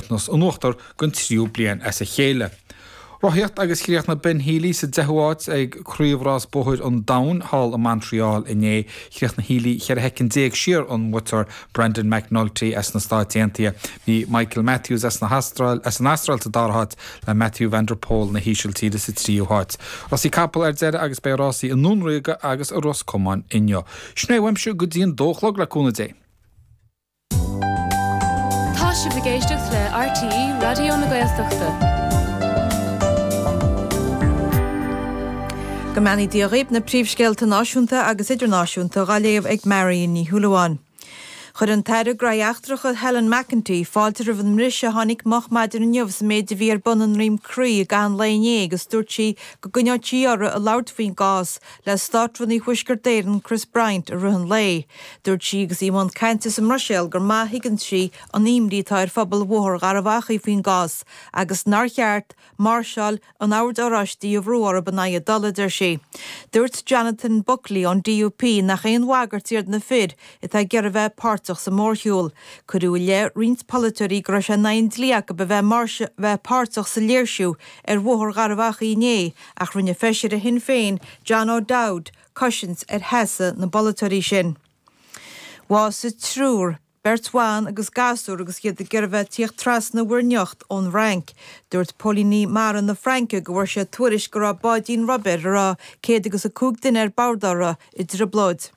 Nós in uachtar don tríú bliain as a chéile. Rothaíocht agus chríochnaigh Ben Healy sa 10ú áit ag Craobhrás Bóthar an Domhain thall i Montreal inné. Chríochnaigh Healy 14 shoicind siar ón mbuaiteoir, Brandon McNulty as na Stáit Aontaithe. Bhí Michael Matthews as na hAstráil as an Astráil sa dara háit, le Mathieu van der Poel na hÍsiltíre sa tríú háit. Rásaí capall ar deireadh agus beidh rásaí i nDún Ríoga agus i Ros Comáin inniu. Sin é uaimse go dtí an dó a chlog, le cúnamh Dé! Tá sibh ag éisteacht le RTÉ Raidió na Gaeltachta. Go mbeannaí Dia dhaoib, na príomhscéalta náisiúnta agus idirnáisiúnta dhá léamh ag Marion Ní Shúilleabháin. Chuir an tAire Gnóthaí Eachtracha Helen McEntee fáilte roimh an mbriseadh a tháinig moch maidin inniu sa méid a bhí ar bun i nDroim Crí i gcaitheamh an lae inné agus dúirt sí go gcoinneodh sí uirthi ag labhairt faoin gcás le Státrúnaí Thuaisceart Éireann Chris Bryant i rith an lae. Dúirt sí agus í i mbun cainte sa mBruiséil gur maith a thuigeann sí an imní atá ar phobal Bhóthar Gharbh Achaidh faoin gcás agus nár cheart máirseáil an Oird Oráistí a bhrú orthu in aghaidh a dtola, a deir sí. Dúirt Jonathan Buckley ón DUP nach aon bhagairt iad na fir atá ag iarraidh bheith páirteach sa mhórshiúl. Cuireadh i leith roinnt polaiteoirí go raibh sé in aghaidh an dlí acu a bheith páirteach sa léirsiú ar Bhóthar Gharbh Achaidh inné Ach rinne feisire Shinn Féin, John O'Dowd, cosaint ar sheasamh na bpolaiteoirí sin. Bhásaigh triúr, beirt bhan agus gasúr agus iad ag iarraidh bheith ag tíocht trasna Mhuir nIocht ón bhFrainc. Dúirt Póilíní Mara na Fraince go bhfuair siad tuairisc go raibh báidín rubair a raibh céad agus a cúig duine ar bord uirthi i dtrioblóid.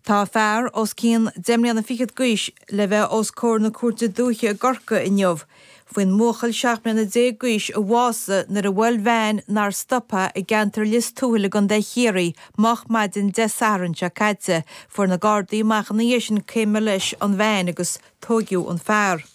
Tá fear os cionn deich mbliana fichead d'aois le bheith os comhair na Cúirte Dúiche i gCorcaigh inniu faoin mbuachaill seacht mbliana déag d'aois a bhásaigh nuair a bhuail veain nár stop é i gceantar Lios Tuathail i gContae Chiarraí moch maidin Dé Sathairn seo caite. Fuair na Gardaí amach ina dhiaidh sin cé mba leis an veain agus tóigeadh an fear.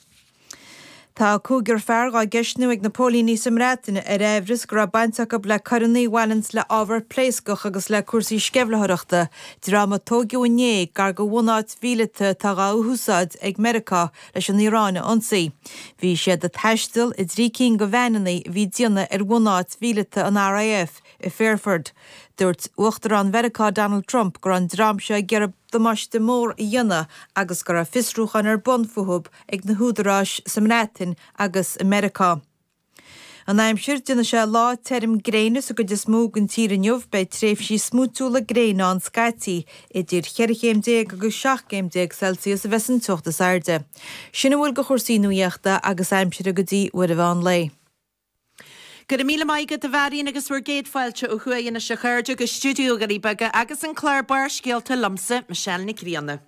Tá cúigear fear dhá gceistiú ag na póilíní sa mBreatain ar aimhreas go raibh baint acu le coireanna a bhaineann le ábhar pléascach agus le cúrsaí sceimhlitheoireachta, dream a tóigeadh inné gar do bhunáit mhíleata atá dhá húsáid ag Meiriceá leis an Iaráin a ionsaí. Bhí siad ag taisteal i dtrí cinn de veaineanna a bhí ag déanamh ar bhunáit mhíleata an RAF i Fairford. Dúirt Uachtarán Mheiriceá Donald Trump go raibh an dream seo ag iarraidh. damáiste mór a dhéanamh agus go raibh fiosrúcháin ar bun fúthu ag na húdaráis sa mBreatain agus i Meiriceá. An aimsir, Déanfaidh sé lá tirim gréine sa gcuid is mó den tír inniu, beidh tréimhsí smúitiúla gréine ann scaití. Idir cheithre chéim déag agus seacht gcéim déag Celsius a bheas an teocht is airde. Sin a bhfuil de chúrsaí nuaíochta agus aimsire go dtí Iris an Lae. Go raibh míle maith agat a Mharion agus bhur gcéad fáilte ó thuaidh anois a chairde go Stiúideo na nDoirí Beaga agus an clár Barrscéalta liomsa, Michelle Nic Grianna.